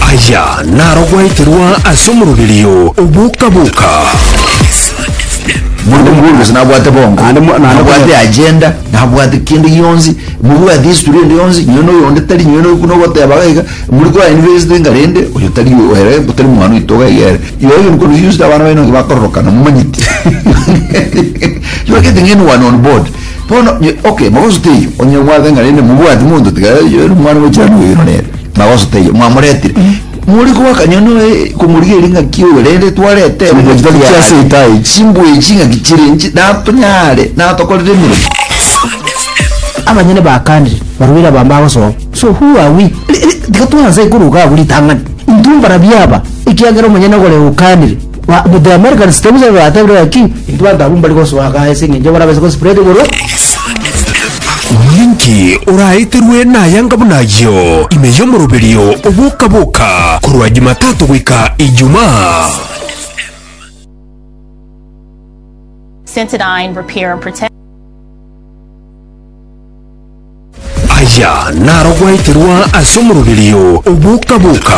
Aya narogweterwa ase omoroberio oboka-boka. Monto mobworobereso nabwate bongo Naende mo- naende nabwate konyora- agenda nabwate kende gionsi mobwate history ende yonsi nonye na oyonde tari nonye na buna ogoteba iga iga muri kwa university iga rende oyo tari oyo ere tari mwana oito iga iga ere igo igo nkorusia yonsi abana baino nabo bakororokana momanyeti you are getting anyone on board Bono, okay, magoso teiyo, onye omwabete ng'a rende mobwati monto tiga ere omwana bwe chirano oyoino nere, magoso teiyo, mwamoretire. More koaka nyoni oye komorigeria ng'aki oyo rende twarete ere Chimbuya chitari chia ase ita echi. chimbuya echi ng'aki chire inche natonyare natokorere emeremo. Abanyene ba country barwire abambe agosoa so who are we Ri- ri- tiga twanse koruga abwo ritang'ani intwe mbarabia aba ekiagera omonyene ogore eukanire Ba- but the americans tebusa batebire baki intwe bantu abwo mbari gosoa gaa ase eng'encho barabase gospread igoro Ninki oraeterwe nayanga buna ayio ime y'omoroberio oboka-boka korwa Jumatatu goika Ijumaa? Cetidine repair and protect. Aya naro gwaeterwa ase omoroberio o boka-boka.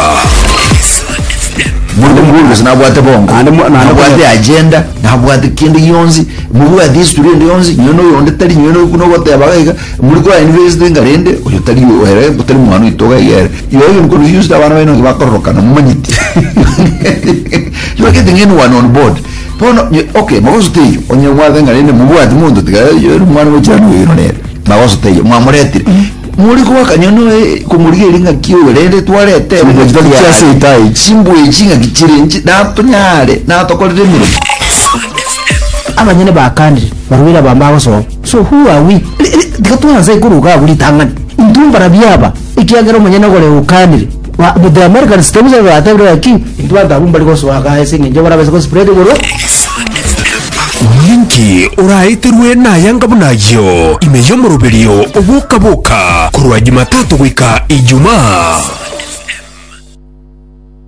Monto mobworobereso nabwate bongo, Naende mo- naende nabwate konyora- agenda, nabwate kende gionsi, mobwate history ende yonsi, nonye na oyonde tari, nonye na buna ogoteba iga iga, muri kwa university enga rende, oyo tari o- ere, tari mwana oito iga iga ere. Yoyo nkono yusi na abana baino bakororokana, momanyeti. You are getting anyone on board. Bono, nyo- okay, mogoso teiyo, onye mwabe ng'a rende mobwati monto tiga, oyo ere omwana ogochia noyo oino nere. Magoso teiyo mwamoretire, mori goaka nyono komorigeria ng'aki oyo, rende twarete Chimbuya chitari engaki chia ase yaye. ita echi. Chimbuya echi ng'aki chire inche, natonyare, natokorere emeremo. Abanyene bakanire, barwire abambe agosoa. So who are we? Tiga twanse koruga abwo ritang'ani. Intwe mbarabio aba, ekiagera omonyene ogore okanire. Ba- but the Americans tebisa igo batebire gaki intwe banto abwo mbari gosoa iga ase eng'encho barabase gospread igoro Ninki oraeterwe nayanga buna ayio ime y'omoroberio oboka-boka korwa Jumatatu goika Ijumaa?